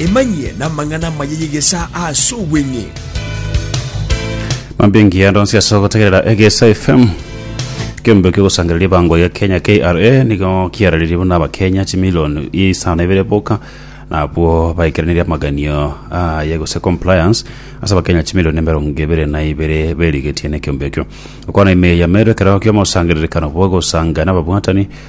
Emanyie n'amang'ana amaya y'egesaa ase obweng'e. Mambia engiya ndonsi ase ogotegerera egesa fm kembe kiogosangereria bango ya kenya kra nigo kiararerie buna abakenya chimilioni isano ibere boka nabwo baikereneria amaganio aye gose compliance ase abakenya chimilioni emerongo ibere na ibere berigetie na ekiombe ekio okwana ime ya mero ekero kiomosangererekano bwa gosanga na ababwatani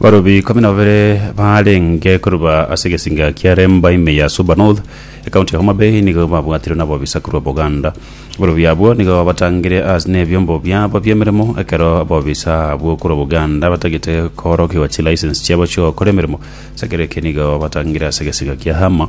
Abarobi ikomi na babere baarenge koruba ase egesinga kia Remba ime ya Suba North, ekaunti ya Homa Bay nigo babwatirwe n'abobisaku ba Buganda. Abarobi abwo nigo babatangire ase nebiombo biabo bi'emeremo ekero abobisa abwo korwa Buganda batagete koorokigwa chilicense chiabo chi'ogokora emeremo. Ase ekero eke nigo babatangire ase egesinga kia Hama.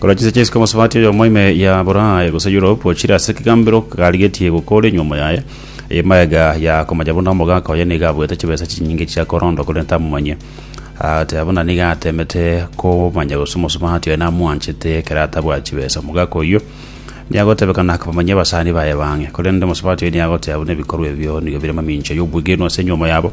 Korwa chinsa chia isiko mosubati oyomo ime ya Buraaya gose Europe ochire ase ekegambero karigetie gokora enyuomo yaye, eema iga ya komanya buna omogaka oye nigo abuete chibesa chinyinge chia korondwa korende amomanye. Agateba buna nigo atemete komanya gose omosubati oye namwanchete ekero atabwati chibesa. Omogaka oyio niagotebekana komanyia abasani baye bang'e, korende omosubati oye niagoteba buna ebikorwa ebio nigo bire mamincha y'obwegenwa ase enyuomo yabo.